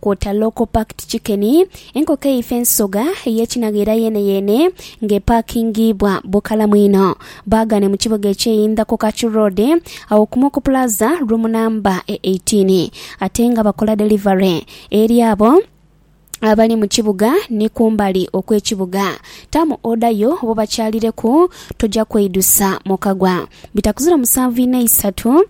Kwota local packed chicken, enkoko eifa ensoga ey'ekinagha era yeeneyeene nga epaakingiibwa bukalamu inho. Baagane mu kibuga eky'e Indha ku Kachu Road agho ku Moku Plaza, room namba e eighteen ate nga bakola delivery eri abo abali mu kibuga ni kumbali okw'ekibuga. Taamu oda yo obobakyalireku, toja kweidusa mukagwa. Bitakuzira musanvu inho eisatu.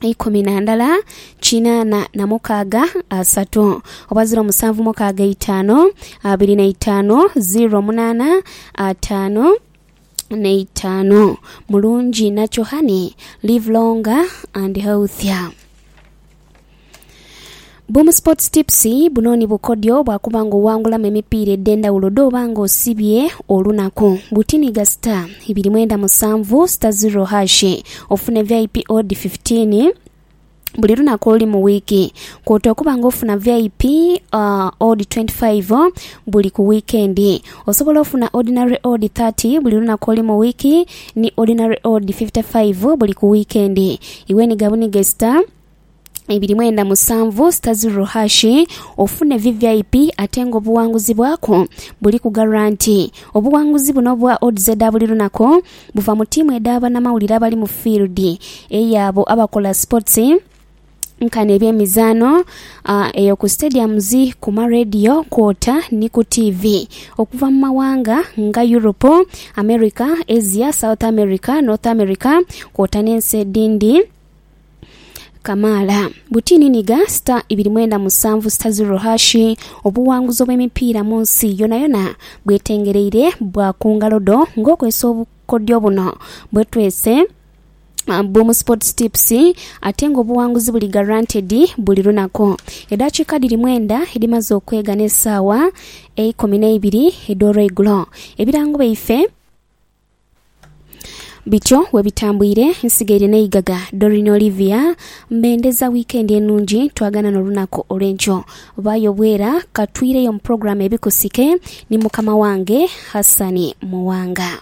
ikumi na ndala kinaana na mukaaga asatu oba ziro musanvu mukaaga eitaanu abiri na itaanu ziro munaana ataanu n'eitaanu mulungi nakyo honey live longer and healthier. Boom Sports Tips, buno ni bukodyo bwa kuba nga owangulamu emipiira edh'endhawulo dh'oba nga osibye olunaku. Butiniiga star ibiri mwenda musanvu star zero hash ofune vip odd 15 buli lunaku oluli mu wiiki kwota okuba nga ofuna vip uh, odd 25 buli ku wiikendi osobola ofuna ordinary odd 30 buli lunaku oli mu wiiki Ni Ordinary Odd fifty five buli ku wiikendi. Iwe ni gabuniga esita ibiri mwenda musanvu sita zirro hashi ofune VVIP ate nga obuwanguzi bwaku buli ku garanti. Obuwanguzi buno obwa odds edha buli lunaku buva mu tiimu edha banamawulire abali mu field, eyo abo abakola sports, nkani eby'emizaano eyo ku stadiums, ku ma radio kwota ni ku tiivi okuva mu maghanga nga Europe, America, Asia, South America, North America kwota n'ensi edhindhi kamaala. Butini nhiga star ibiri mwenda musanvu star zero hash obuwanguzi obw'emipiira mu nsi yonayona bwetengereire bwa ku ngalo dho ng'okozesa obukodyo buno bwetwese. Boom Sports Tips ate nga obuwanguzi buli guaranteed buli lunaku. Edhakiika dhiri mwenda edhimaze okwega n'esaawa eikumi n'eibiri edh'olweigulo. Ebirango byaife bityo bwebitambwire, Nsigaire Naigaga, Doreen Olivia, Mbendeza wiikendi enungi twagana n'olunaku olw'enkyo. Vaayo bwera katwireyo mu pulogulaamu ebikusike ni mukama wange Hassan Muwanga.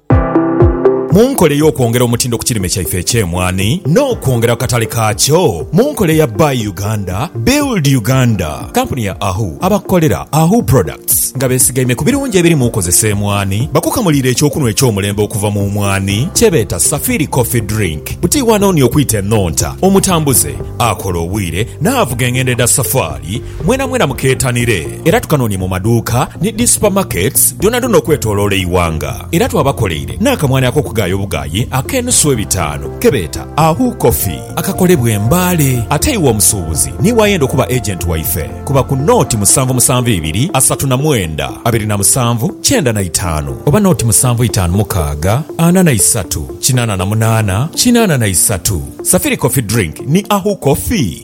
Mu nkola ey'okwongera omutindo ku kirime kyaife eky'emwaani n'okwongera ku katale kaakyo mu nkola eya Buy Uganda, Build Uganda, kampuni ya Ahu abakolera Ahu Products nga besigaime ku birungi ebiri mu kozesa emwaani bakukamuliire eky'okunhwa eky'omulembe okuva mu mwaani kyebeeta Safiri Coffee Drink. Buti wano ni okwita enhonta, omutambuze, akola obwire n'avuga engendo edha safaali, Mwenamwena mukeetanire era tukanoonye mu maduuka ni dhi supamaketi dhoonadhoona okwetooloola eighanga. Era twabakoleire n'akamwani ak'okugaaya obugaayi ak'enusu ebitaanu ke beeta Ahu Coffee akakolebwa e Mbale. Ate iwe omusuubuzi niiwe ayenda okuba agenti waife, kuba ku nooti musanvu musanvu ibiri asatu na mwenda abiri na musanvu kyenda na itaanu oba nooti musanvu itaanu mukaaga ana na isatu kinaana na munaana kinaana na isatu. Safiri Coffee Drink ni Ahu Coffee.